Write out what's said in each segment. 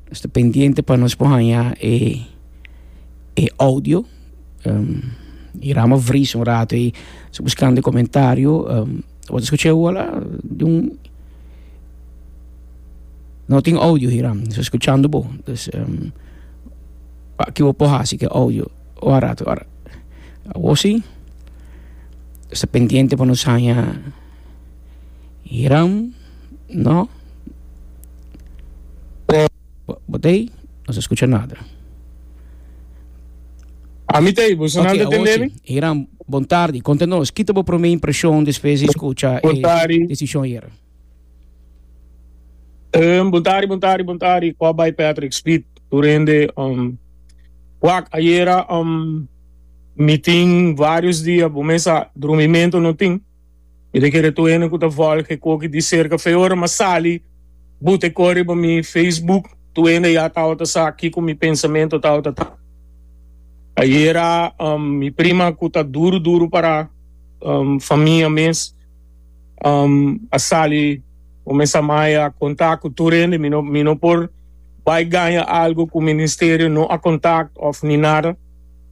Nos ta pendiente pa nos por haña e e audio i rama vrisa un rato ei so buskando e komentario bo ta skucha awor la di un no tin audio hiram no ta skuchando bo dus aki bo por hasi ke audio o a rato awor si nos ta pendiente pa nos haña hiram. No. Por. Bo ta ei? No ta scucha nada. Ami ta ei, boso nan ta tende mi? Ochi, Hiram, bon tardi. Conta nos, ki ta bo prome impresion despues di scucha e decision yera? Hiram, Bon tardi, bon tardi, bon tardi. Cua bay Patrick, Speed, tur hende? Um, Wak, Ayera, um, mi tin varios dia, bo mes sa, drumimento no tin. Mi ta kere tur hende ku ta volg e koki di serka fe ora m'a sali but e kor riba mi Facebook. Tur hende ya tabata sa kiko mi pensamentu tabata ta. Ayera mi prima ku ta duru duru para famia mes a sali kuminsá maya kontak ku tur hende. Mi no mi no por bai gaña algu ku Ministerio no a kontak òf ni nada.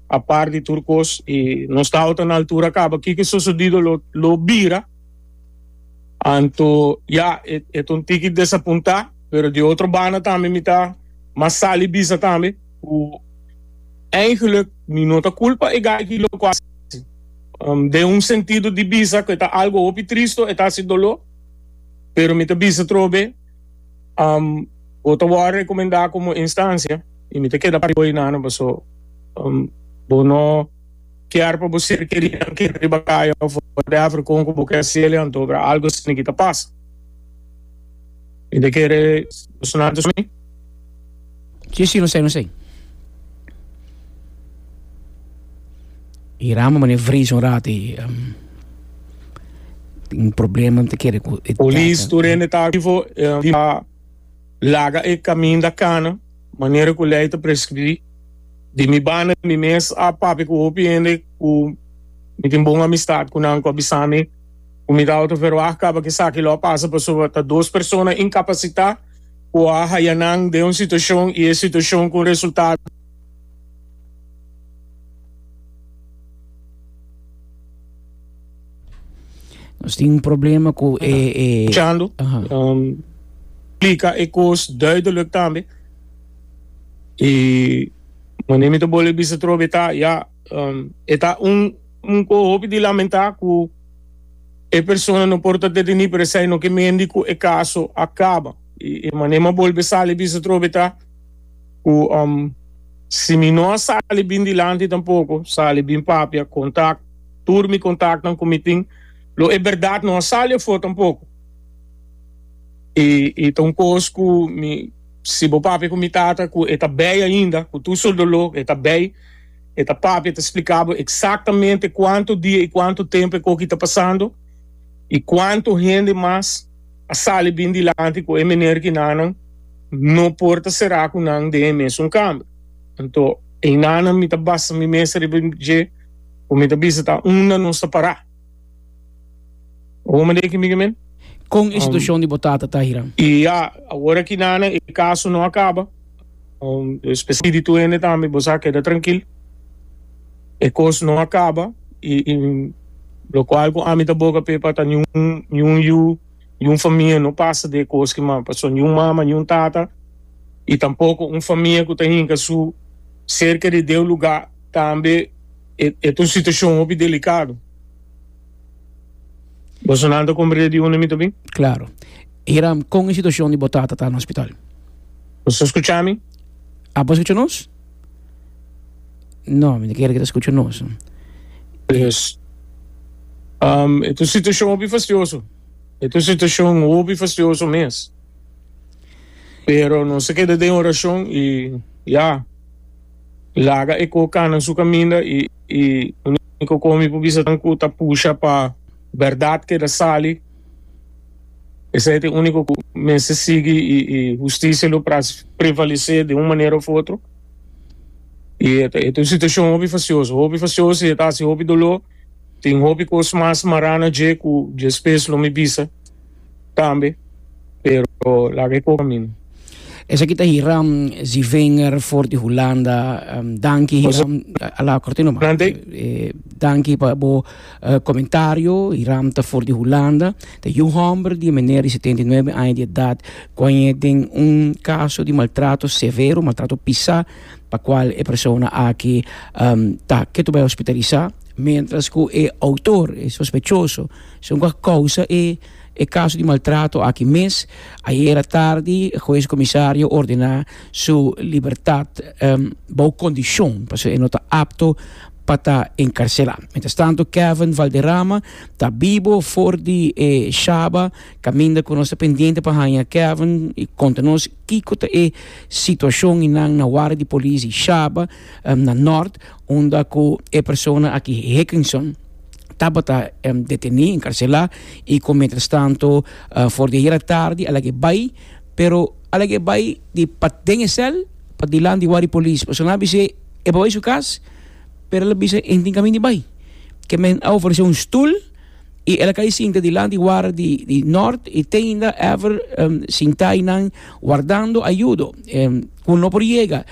Apart di tur kos y nos ta outa na altura caba kico sosodido lo lo bira anto ya e e ta un tiki desapunta pero di otro banda tambe mi ta mas sali bisa tambe cu eigenlijk mi no ta culpa e gaiky lo cu a haci den un sentido di bisa cu e ta algo hopi tristo e ta haci dolo pero mi ta bisa trobe Um, bo ta wòrdu rekomendá komo instansia i mi ta keda pa riba bo hinano paso um, bo no kier pa bo ser kerinan keda riba kaya òf whatever kon ku bo ke hasel'e anto obra algu esaki ta pasa. Mi ta kere bo su nan tusmi. Chi si nos esei, nos esei. Hiram a mane vrisa un rato i a tin un problema ta kere ku e Polis tur hende ta aktivo i a laga e kaminda kana manera ku lei ta preskribí. Di mi banda mi mes a papia ku hopi hende ku mi tin bon amistat ku nan ku a bisa mi ku mi ta outo verwag kaba ku esaki lo a pasa pasobra ta dos persona inkapasitá. ku a haya nan den un situashon i e situashon ku un resultado. Nos tin un problema ku e e Escuchando, Aha. um, explica e cos duidelijk tambe. Y wanneer mi te bolbe bisa trobe ta, ja, E ta un un cu hopi di lamentá cu e persona no por ta detení per esei no ke mendi cu e caso a caba. Y e manera m'ha bolbe sali bisa trobe ta cu si mi no a sali bin dilanti tampoco, sali bin papia, contact tur mi contactnan cu mi tin, lo e berdad no a sali afo tampoco. Y y ta un cos cu mi si bo papia cu mi tata cu e ta bay ainda, cu tur su dolor e ta bay. E ta papia, e ta spliká bo eksaktamente kuantu dia i kuantu tempu e koki ta pasando i kuantu hende mas a sali bin dilanti ku e mener ku enanan no por ta será ku nan den e mesun kamber. Anto e enanan mi ta basa mi mesa riba dje ku mi ta bisa ta unda nos ta pará. Como me deki migi men? Con e situacion di bo tata ta, Hiram? Y ya, awor aki nana e caso no a caba. Spiritu hende tambe, bo sa, keda trankil. E cos no a caba. Y locual cu ami ta boga p'e pa ta niun, niun yu, niun famia no pasa d'e cos ki mas. Pasobra niun mama, niun tata y tampoco un famia cu ta hinca su cerca di d'e lugar tambe. E ta un situacion hopi delicado. Boso nan ta comprende di unda mi ta bin? Claro. Hiram, con e situacion di bo tata ta na hospital? Boso ta scucha mi? Abo a scucha nos? No, mi ta kere cu ta scucha nos. Yes. Um, e ta un situacion hopi fastioso. E ta un situacion hopi fastioso mes. Pero nos a keda den oracion y ya. Laga e kokanan su kaminda i e uniko kos mi por bisa ta ku ta pusha pa bèrdat keda sali. Esei ta e uniko ku mester sigui i e hustisia lo prevalesé den un manera òf otro. I e ta un situashon hopi fasioso, hopi fasioso i e ta hasi hopi doló. Tin hopi kos mas mará na dje ku diespes lo mi bisa. tambe, pero laga e poka min. Esaki ta Hiram Zivinger for di Hulanda. Um, danki Hiram. Ala korte no man. Eh, danki pa bo uh, eh, komentario. Hiram ta for di Hulanda. Ta yu homber di meneer di 79 aña di edad. Koñe den un kaso di maltrato severo, maltrato pisa, pa kwal e persona aki um, ta ketu bai hospitalisá. Mientras ku e autor, e sospechoso, Son cu a causa e e caso di maltrato aki mes. Ayera tardi e hues comisario ordena su libertad bao condicion pasobra e no ta apto pa ta encarcela. Mientras tanto Kevin Valderrama ta bibo for di e shaba caminda cu nos ta pendiente pa haya Kevin y conta nos kico ta e situacion y nan na ward di police di shaba na Nort unda cu e persona aki Hickenson tabata deteni, enkarselá, i kon mientras tanto for di ayera tardi a lag'e bai, pero a lag'e bai di paden e sèl pa dilan di wak di polis, pasobra nan a bis'é e por bai su kas, pero el a bisa e tin kaminda bai, ke men a oferesé un stul i el a kai sinta dilan di wara di nort i teinda èver sintá einan wardando ayudo ku no por yega,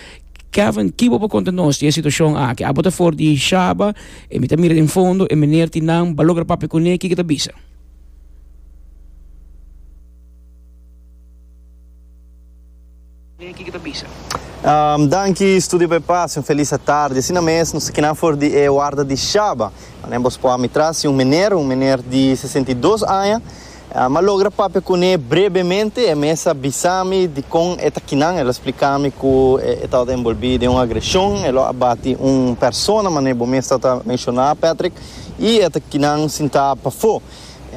Kevin kibo por konta nos di e situashon aki? Abo ta for di Shaba E mi ta mira den fondo, e meneer tin nan, ba logra papia cu ne, kiko ta bisa? Danki Studio pa e pase, un felis atardi. Asina mes nos ta kinan for di e warda di Shaba. Manen bos por ami trasi un meneer, un meneer di sesenta i dos aña. Am a logra papia kuné brebemente, e mes a bisa mi di kon e ta kinan, e lo splika mi ku e tabata enbolbí den un agreshon, e lo a bati un persona manera bo mes tabata menshoná, Patrick, i e ta kinan sintá pafó.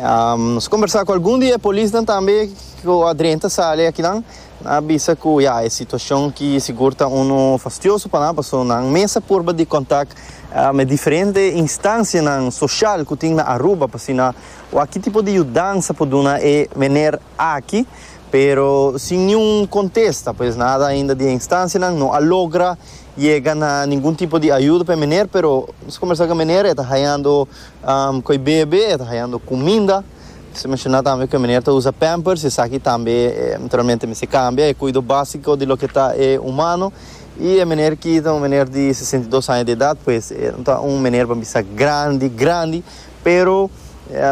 Am nos a kombersá ku algun di e polisnan tambe ku a drenta sali akinan, nan a bisa ku ya, e situashon ki sigur ta unu fastioso pa nan, pasobra nan mes a purba di kontak, am e diferente instansianan soshal ku tin na Aruba pa asina Wak ki tipo di yudansa por duna e mener aki, pero sin niun kontesta. Pues nada ainda di e instansianan no a logra yega na ningun tipo di ayuda pa e mener, pero nos a kombersá ku e mener, e ta hayando ku e bebe, e ta hayando kuminda. Nos a menshona tambe ku e mener ta usa pampers, i esaki tambe naturalmente mester kambia, e kuido básiko di loke ta e humano. I e mener ki ta un mener di sesenta i dos aña di edat, pues e ta un mener pa mi bisa grandi grandi. Pero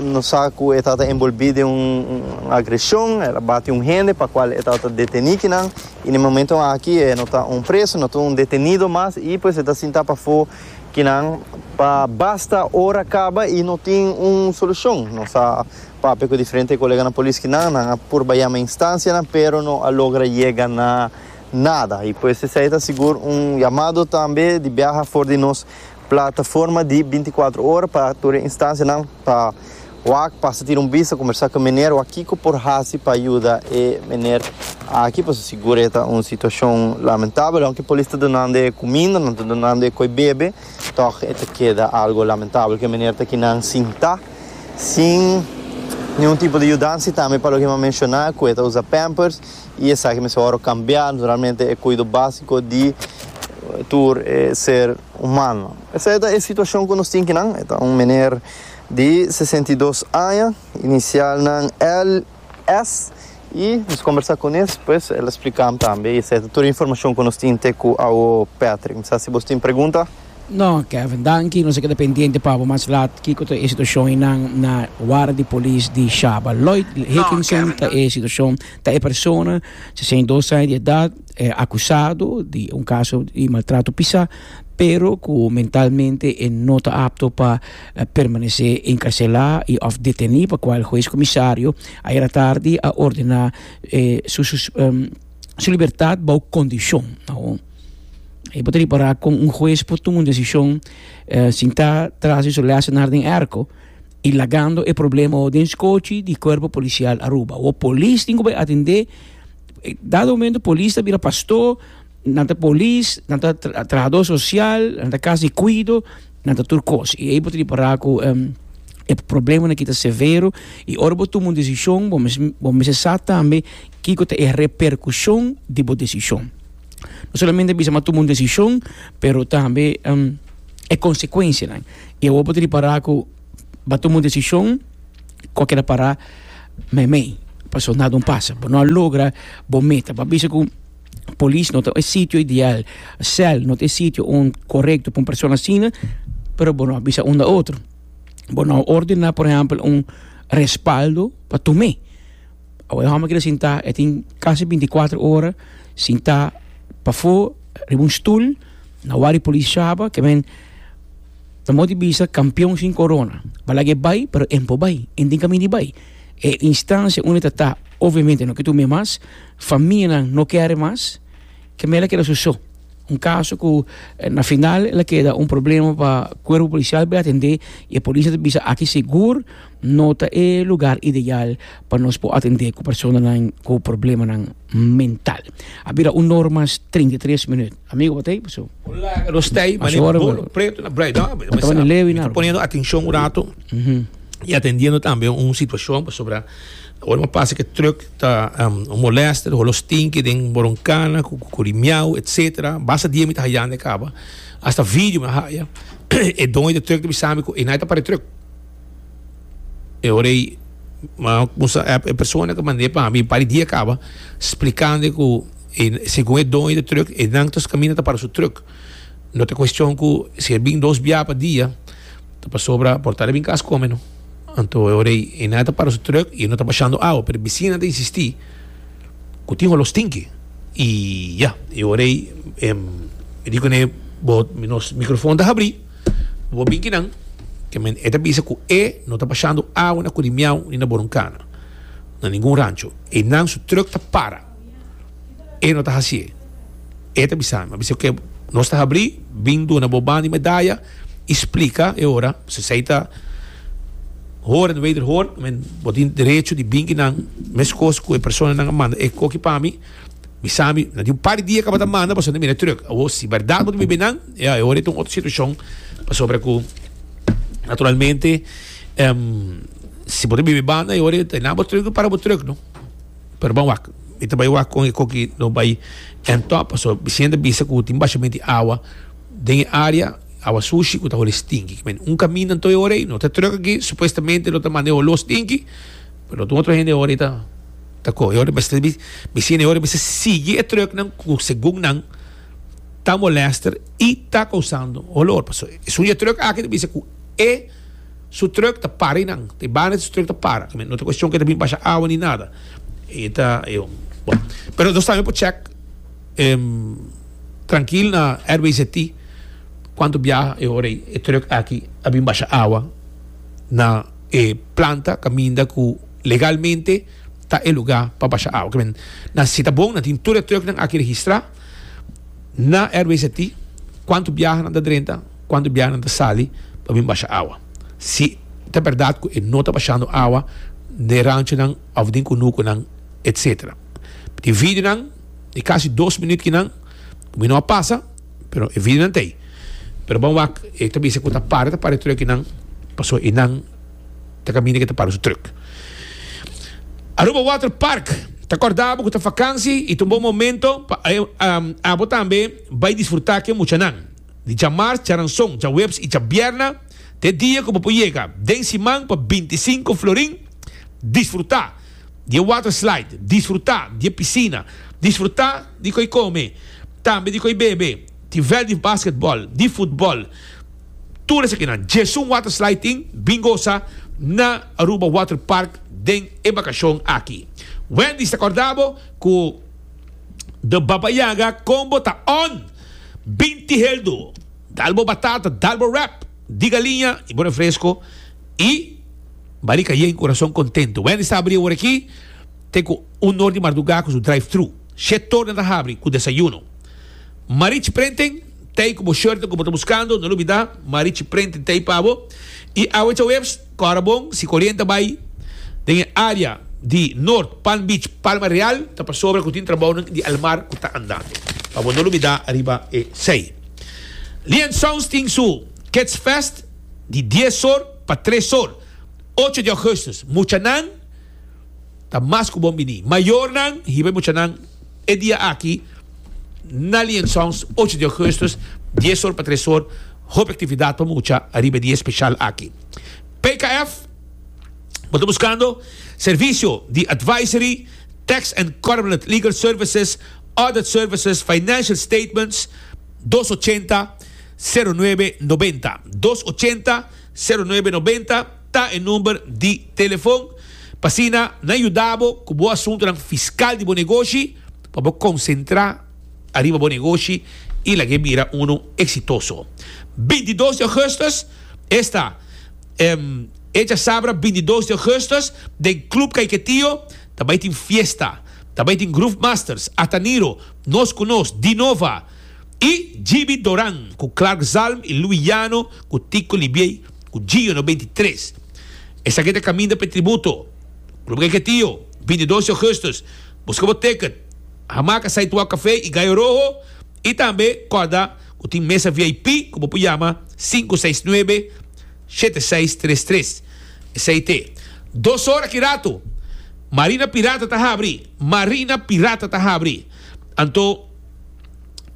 nos sa cu e tata enbolbi den un agresion, el a bati un hende pa cual e tata deteni kinan y na e momento aki e no ta un preso, no ta un detenido mas y pues e ta sinta pafo kinan pa basta ora caba y no tin un solucion. Nos a papia cu diferente coleganan polis kinan, nan a purba yama e instancianan pero no a logra yega na nada y pues esey ta sigur un yamado tambe di biaha for di nos Plataforma di binti kuater ora pa tur e instansianan pa wak pasa tira un bista, kombersá ku e mener, wak kiko por hasi pa yuda e mener aki pasobra sigur e ta un situashon lamentabel. Aunke polis ta dunando e kuminda, nan ta dunando e koi bebe, tòg e ta keda algu lamentabel ku e mener ta kinan sintá sin niun tipo di yudansa i tambe pa loke mi a menshoná ku e ta usa pampers y esaki mester ora cambia, naturalmente e cuido basico di tur e ser humano. Esaki ta e situacion cu nos tin kinan, e ta un meneer di sesenta i dos aña, inicial nan LS, y nos combersa cu nes pues el a splican tambe y esaki ta tur e informacion cu nos tin te cu awo Patrick. Mi sa si bos tin pregunta. No Kevin, danki, nos a keda pendiente pa bo mas laat kico ta e situacion einan na Warda di Polis di Shaba. Lloyd Hickinson ta e situacion Ta e persona, sesenta i dos aña di edat, e akusado di un kaso di maltrato pisá, pero ku mentalmente e no ta apto pa permanesé enkarselá i òf detené, pa kual hues komisario ayera tardi a ordená su su libertat bou kondishon. E bo ta ripará kon un hues por tuma un desishon sin ta tras di su lèsenar den èrko. y lagando e problema ho den scochi di Cuerpo Policial Aruba. Ho polis tin cu bay atende, dado momento polis ta bira pasto, nan ta polis, nan ta trabajador social, nan ta cas di cuido, nan ta tur cos. Y ey bo ta di para cu em, e problema aki ta severo y ora bo tuma un decision bo mes, bo mester sa tambe kico ta e repercusion di bo decision. no solamente bisa ma tuma un desishon, pero tambe e konsekuensianan. I awor bo ta ripará ku bo a tuma un desishon ku a keda pará meimei, pasobra nada un pasa, bo no a logra bo meta. Bo a bisa ku polis no ta e sitio ideal, sèl no ta e sitio korekto pa un persona asina, pero bo no a bisa unda otro. Bo no a ordená, por ehèmpel, un respaldo pa tum'é. Awor e homber keda sinta, e tin casi binti y cuatro ora sinta pafo riba un stoel na wak di policia shaba ke men ta moti bisa campeon sin corona. Ba laga e bay pero e no por bay, e no tin camin di bay. E instancia unda e ta ta obviamente no ke tur mey mas, famianan no kere mas, ke men la keda su so. Un caso cu na final el a keda un problema pa cuerpo policial bay atende y e policia ta bisa aki segur. No ta e lugar ideal pa nos por atendé cu personanan cu problemanan mental. A bira un nor mas treinta i tres minut. Amigo batey paso. Un laga nos tey Mas mané ora bo lo preto na bray da mi ta banda lewi na ta poniendo atencion un rato y atendiendo tambe un situacion pasobra ora mi a pasa ke truck ta molesta ta holo stinky den boroncana cu curi miau etcetera basta dia mi ta hayando e caba hasta video mi a haya e doño di truck ta bisambi cu e nai ta para e truck. E ora ei m'a kuminsá èp e persona ku mand'é pa mi un par di dia kaba splikando ku e segun e doño di trùk e nan ta kaminda ta para su trùk. No ta kuestion ku si e bin dos bia pa dia ta pasobra por tabata bin kas kome no. Anto e ora ei e nan a ta para su trùk i e no ta bashando awa pero e bisinan ta insistí ku tin olor stinki i ya e ora ei mi di kuné bo nos mikrofòn ta habrí. Bo binki nan, ke men e ta bisa ku e no ta bashando awa na Kurimiau ni na Boronkana, na ningun rancho. Einan su trùk ta para. E no ta hasié. E ta bisa mi, a bisa ku e nos ta habrí, bin duna bo ban di medaya i splika e ora. Sesa i ta hora di wederhoor, men bo tin derecho di binki nan, meskos ku e personanan a manda e koki pa mi. Mi sabi, na di un par di dia tabata manda pasobra nan mira e truck. Awo, si berdad bo ta biba einan, ya, e ora ei ta un otro situacion, pasobra cu naturalmente si bo ta biba ei banda e ora ei nan bo truck, bo para bo truck, no? Pero bo a wak. Mi ta bai wak con e coki lo bai end top, pasobra bicien ta bisa cu tin bashamento di awa den e area, awa sushi cu ta holi stinki. Kimin un caminda anto e ora ei, no ta e truck aki, supuestamente lo ta manda e holos stinki, pero lo ta un otro hende e ora ei ta. Ta cu e ora mester mi bicina e ora mester sigui e trucknan cu segun nan ta molester y ta causando olor paso esun e truck aki ta bisa cu e su truck ta para y nan ta e banda di su truck ta para tambe no ta cuestion cu e ta bini basha awa ni nada y ta bon pero nos tambe por check trankil na RBZT cuanto biaha e ora e truck aki a bin basha awa na e planta caminda cu Legalmente ta e lugá pa basha awa. Kende na Sitabon nan tin tur e trùknan aki registrá na RWCT, kuantu biaha nan ta drenta, kuantu biaha nan ta sali pa bin basha awa. Si ta bèrdat ku e no ta bashando awa den ranchonan òf den kunukunan etsetera. Tin videonan di kasi dos minüt ki nan ku mi no a pasa, pero e videonan ta ei. Pero ban wak, e ta bisa ku ta para ta para e trùknan pasobra i nan. ta caminda ke ta para su truck. Aruba Water Park ta corda abo cu ta vakansi y ta un bon momento pa abo tambe bay disfruta ke muchanan. Di djamars, djaranzon, djaweps y djabierna ta e dia cu bo por yega den siman pa binti sinku florin. Disfruta di e water slide, disfruta di e piscina, disfruta di cu ey come, tambe di cu ey bebe, di veldi basketbal, di futbal, Tur esakinan, Jesun Water Slide tin bin gosa na Aruba Water Park den e bakashon aki. Wendy's ta korda bo ku The Baba Yaga kon bo ta on! Bin tihel do, dal bo batata, dal bo wrap di galiña i bo refresko i barika yen, kurason kontento. Wendy's ta abri e ora aki te ku un nor di mardugá ku su drive-thru. Shét tornan ta habri ku desayuno. Marich Printing, t'ei ku bo shorta ku bo ta buskando, no lo bida, Marich Printing t'ei pa bo. I awechaweps, kòrda bon, si ku orienta bai den e área di Nort, Palm Beach, Palma Real, ta pasobra ku tin trabounan di almar ku ta andando. Pa bo no lo bida riba esei. Lian Sounds tin su Kids Fest di dies or pa tres or, ocho di ògùstus. Muchanan ta mas ku bon bini. Mayornan hiba e muchanan. E dia aki na Lion Sounds ocho di augustus dies or pa tres or hopi actividad pa mucha ariba e dia especial aki. PKF bo ta buscando servicio di advisory, tax and corporate legal services, audit services, financial statements, dos ochenta, zero nuebe, noventa, dos ochenta, zero nuebe, noventa. ta e number di telefon pa asina nan yuda bo ku bo asuntunan fiskal di bo negoshi pa bo konsentrá ariba bo negoshi i laga e bira unu eksitoso. Binti dos di Ougustus esta echa sabra binti dos di Ougustus den Club Kaiketio ta bai tin fiesta ta bai tin Groove Masters Ataniro Nos ku Nos Dinova i GB Doran ku Clark Zalm i Louis Jano ku Tico Libiey. ku Gio no beinti tres. Esaki ta kaminda pa e tributo. Ku lo bo keke tio, beinti dos di Ougustus, buska bo teket, hamaca Saituau Café i Gallo Rojo i tambe kòrda ku tin mesa vip ku bo por yama sinku seis nuebe shete seis tres tres. Esei te dos ora ki ratu. Marina Pirata ta habri. Marina Pirata ta habri. Anto.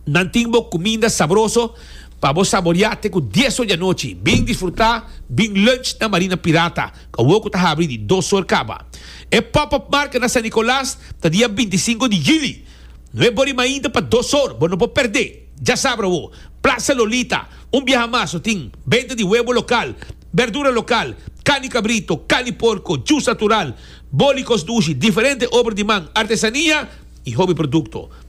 Nan tin bo cuminda sabroso pa bo saboria te cu dies or di anochi. Bin disfruta bin lunch na Marina Pirata, cabo cu ta habri di dos or caba. E pop-up market na San Nicolas ta dia binti i sinku di juli. No e bori mainta pa dos or, bo no por perde. Djasabra awo, Plaza Lolita, un biaha mas lo tin, benta di webo local, berdura local, carni cabrito, carni porco, jus natural, bolicos dushi, diferente obra di man, artesania y hobi producto.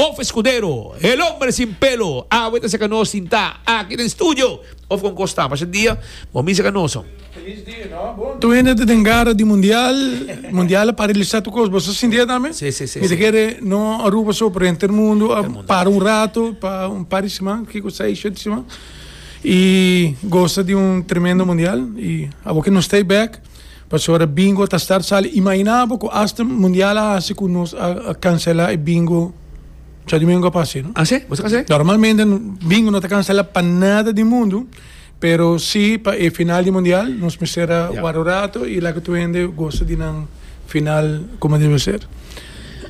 Of Escudero, El Hombre Sin Pelo, Awe ta serka nos sintá aki den studio of kon kostá pasha dia bo misa ka nos so. Tu hende ta den gara di mundial, mundial a paralisá tur kos, bo ta sinti e tambe? Sí, sí, sí, Mi ta sí. kere no Aruba so, pero henter mundu a para un rato pa un par di siman, kiko seis, shete siman, i gosa di un tremendo mundial i abo ke nos stay back. Pasobra bingo ta start sali. Imaginá bo ku asta mundial a hasi ku nos a kanselá e bingo Chadimengu a pase, no? A se, boso ka se? Normalmente bingo no ta kanselá pa nada di mundu, pero si pa e final di mundial nos mester a Ya. wara un ratu i laga tur hende gosa di nan final komo debe ser.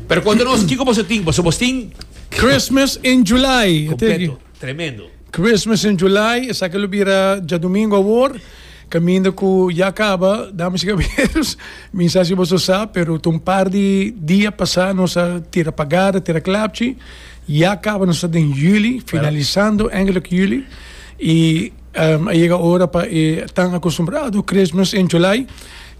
Pero konta nos, kiko boso tin? Boso bos tin Christmas in July, e teki. completo. tremendo. Christmas in July, esaki lo bira djadumingu awor, caminda cu ya caba, damas y caberos, mi sa si boso a sa, pero ta un par di dia pasa nos a tira pagada, tira clapchi, ya caba nos ta den juli, finalizando eindelijk juli, y a yega ora pa e tan acostumbrado Christmas in July,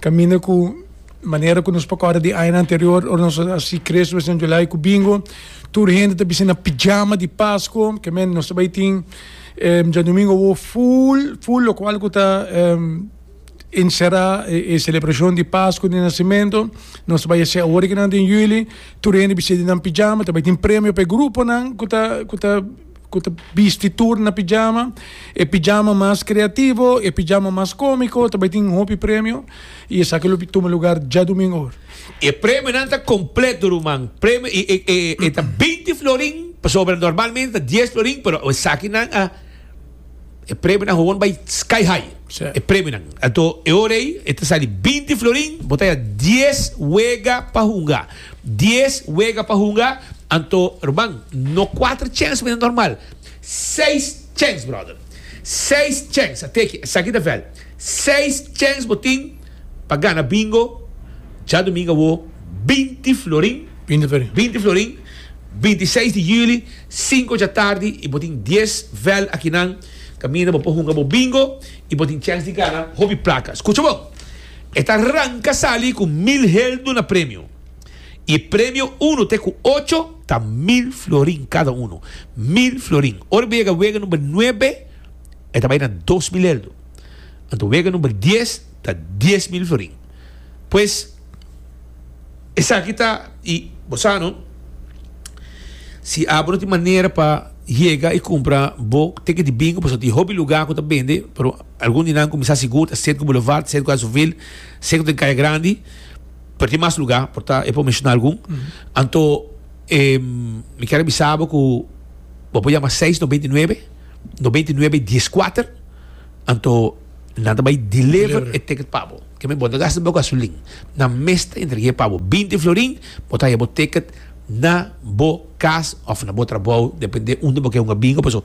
caminda cu. Manera ku nos por kòrda di añanan anterior, ora nos a hasi Christmas and July ku Bingo, tur hende ta bistí na pijama di Pasko. Ke men, nos ta bai tin djadumingu awo ful, ful lokual ku ta enserá e selebrashon di Pasko di Nasimentu. Nos ta bai hasi awo rikinan den Yuli. Tur hende bistí di nan pijama. Ta bai tin premio pa e gruponan ku ta, ku ta. cu ta bisti tur na pijama, e pijama mas creativo, e pijama mas comico ta bay tin hopi premio y esaki lo tuma lugar djadomingo hour. E premionan ta completo ruman, premio y e e ta binti florin pasobra normalmente ta dies florin pero esaki nan a e premionan gewoon bay sky high Sí. e premionan anto e ora ey e ta sali binti florin bo ta ya dies wega pa hunga. Dies wega pa hunga, anto rman, no kuater chens ku ta normal, seis chens brother, seis chens, a teki, esaki ta vèl, seis chens bo tin pa gana bingo djadumingu awo binti florin, binti florin, binti seis di juli, sinku dja tardi i bo tin dies vèl akinan kaminda bo por hunga bo bingo i bo tin chens di gana hopi plakas. Kucha bon! E ta ranka sali ku mil heldu na premio i e premio unu te ku ocho ta mil florin kada unu. Mil florin. Ora bo yega wega number nuebe e ta bai na dos mil heldu. Anto wega number dies ta dies mil florin. Pues esaki ta i bo sa no si abo no tin manera pa yega i kumpra bo teken di bingo pasobra tin hopi luga ku ta bende pero Algun di nan kuminsá sigur ta Sirku Boulevard, Sirku Azuwil, Sirku den Kaya Grandi, pero tin mas lugá, por ta e por menshoná algun. Anto mi kier a bisa bo ku bo por yama seis noventa i nuebe, noventa i nuebe dies kuater, anto nan ta bai deliver e ticket pa bo. Ke men bo no ta gasta bo gasolin, nan mes ta entreg'é pa bo. Binti florin bo ta haña bo ticket na bo kas òf na bo trabou, depende unda bo ke hunga bingo. Paso.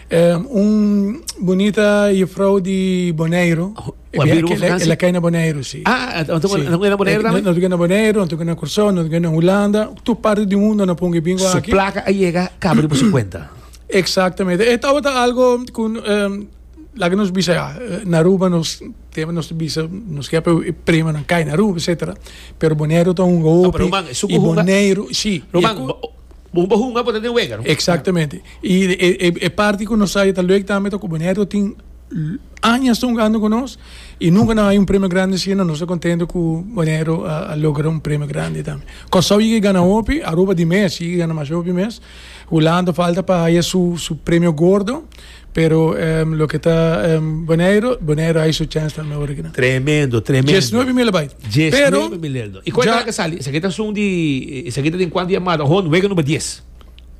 Un bunita jufrou di Boneiru. E biaha ki el, el a kai na Boneiru, si. Ah, anto ku e na Boneiru tambe? Anto ku e na Boneiru, anto ku e na Kursou, anto ku e na Hulanda, tur parti di mundu nan pon ku e bin ku aki. Su plaka a yega kaba riba su kuenta. Eksaktamente. E tabata algu ku laga nos bisa ya, na Aruba nos tempu nos ta bisa nos ke apoyo e premanan kai na Aruba, etsetera, pero Boneiru ta hunga hopi i Boneiru, si. Román, Bo bo hunga bo ta den wega, no? Exactamente. Y e, e, e parti cu nos sabe ta luek tambe ta cu Bonaire tin añas ta jugando con nos y nunca no hay un premio grande así, no nos ta contento cu Bonaire a, a logra un premio grande tambe. Curaçao yega y gana hopi, Aruba di mes yega y gana masha hopi mes. Hulanda falta pa haya su, su premio gordo. Pero loke ta Boneiro, Boneiro hay su chance tambe ora kina. Tremendo, tremendo. Diesnuebe mil a bai. Diesnuebe mil lel no. I kuanta laka sali? Esaki ta sun di, esaki ta den kuanta yamada? Hon, wega number dies.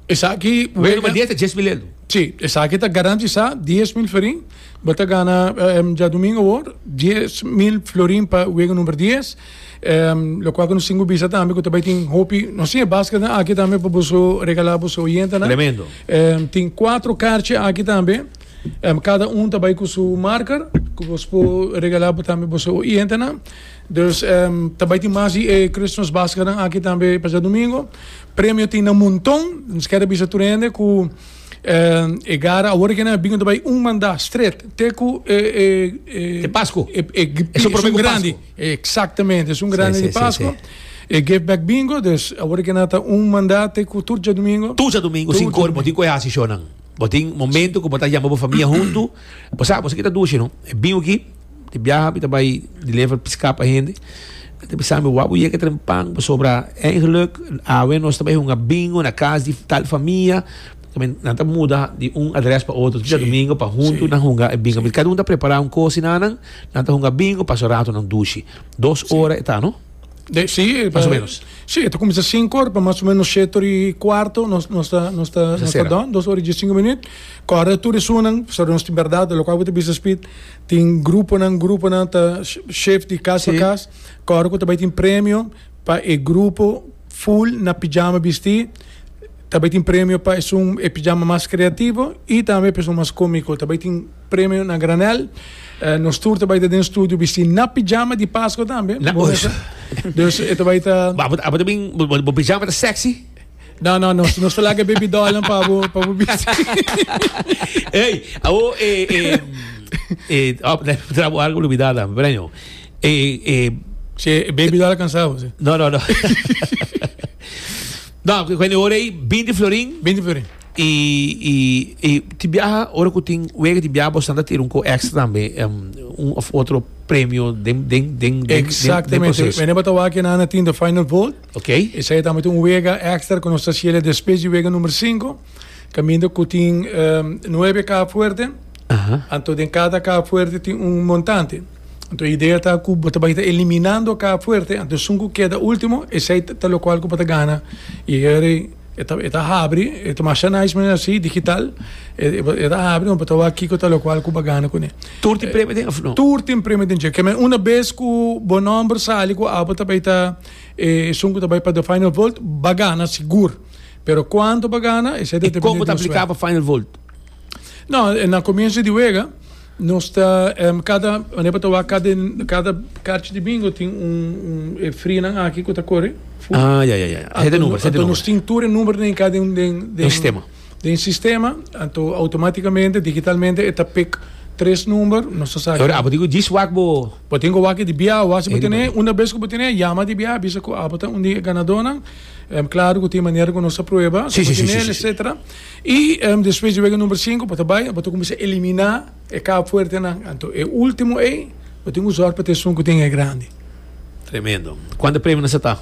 Esaki wega. Wega number dies ta dies mil lel no. Si, esaki ta garantisa dies mil florin. Bo ta gana djadumingo awor dies mil florin pa wega number dies. Ehm, locual cu nos tin cu bisa tambe cu ta bay tin hopi, nos tin e basket na aki tambe pa boso regala boso oyente nan. Tremendo. Ehm, tin cuatro carchi aki tambe. Ehm, cada un ta bay cu su marker cu bos po regala bo tambe boso oyente nan. Dus, ehm, ta bay tin mas di e Christmas basket nan aki tambe e pasado domingo. Premio tin nan monton. Nos ker a bisa tur hende cu, ehm, e gara awor aki nan a bin ta bay un manda stret te cu e, e, e, Te Pascu. e, e, Eso prope cu Pascu. Exactamente, es un grande di Pascua. E Give Back Bingo, dus awor ke nan ta un manda te ku tur djadumingo. Tur djadumingo sin kor bo tin ku e hasi shonan. Bo tin momento ku bo ta yama bo famia huntu. Bo sabi, bo sa ke ta dushi no. E bingo aki, bo ta biaha, bo ta bai deliver piska pa hende. Nan ta bisa mi, wak bo yega trempan pasobra, eigenlijk, awe nos ta bai hunga bingo na kas di tal famia. También nan ta muda di un adres pa otro. Tuja domingo pa huntu nan hunga e bingo. Cada un ta prepara un cosa na nan. Nan ta hunga bingo pa so rato nan dushi. Dos ora eta no? De, sí, más o menos. Sí, está comienza 5 horas, para más o menos 7 horas y cuarto, nos, nos está, nos está, nos está dando, 2 horas y 15 minutos. Corre tú de sunan, so nos tin verdad, lo cual te bisa speed, tin grupo nan, grupo nan, ta shift de casa sí. para casa, corre tú te tin premio, para el grupo, Full na pijama bistí ta bai tin premio pa esun e pijama mas kreativo i tambe pa esun mas kómiko. Ta bai tin premio na granel. Nos tur ta bai ta den studio bistí na pijama di Paskua tambe. Bo mester. Dus e ta bai ta. Abo ta bin bo pijama ta sèksi? No, no, nos, nos ta laga baby dollnan pa bo, pa bo bisti. Ey, awo, eh, eh, eh, oh, trabo algo olvidada, Breño. E, e, Che, e baby doll alcanzado. sí. No, no, no. no, cu- cuando ahora ahí, 20 florín. 20 florin. Y, y, y te viaja, ahora que tin wega te viaja, bostante tiene un co extra también, em, un of otro premio den, den, den, den, den, den Exactamente. proceso. Meneer Batawa que nana tin de final vote. Ok? E sai tambe tin un wega extra con nuestra cielo después de wega nummer 5. Caminda cu tin um, 9 caja fuerte. Aha. Anto den cada caja fuerte tin un montante. Anto e idea ta ku bo ta bai ta eliminando ka fuerte, anto esun ku keda ultimo esei ta lokual ku bo ta gana. I heri e ta e ta habri, e ta masha nice manera si, digital, e e ta habri pa bo ta wak kiko ta lokual ku bo gana kuné. Tur tin premio den òf no? Tur tin premio den dje. Keme una bes ku bo nòmber sali ku abo ta bai ta e esun ku ta bai pa The Final Vote, ba gana sigur. Pero kuantu bo gana esei ta depende di bo suerte. I kon bo ta apliká pa Final Vote? No, na comienzo di wega nos ta um, cada mane pa tawa cada cada carchi di bingo tin un un e frinan aki ku ta corre. Ah, ya ya ya. Zet de number, zet de number. Nos tin tur e number den cada den den den sistema. Den sistema, anto automaticamente digitalmente e ta pick tres number, nos ta sa. Ora abo digo dis wak bo. Bo tin go wak di bia o asi bo tene, una vez ku bo tene, llama di bia bisa ku abo ta un di e ganadornan. Um, claro ku tin manera ku nos ta prueba, si bo tene etcetera. I despues di wega number sinku bo ta bai bo ta cuminsa elimina e cab fuertenan anto e ultimo ey bo tin cu zor pa ta esun cu tin e grandi. Tremendo. Cuanta premionan sa ta?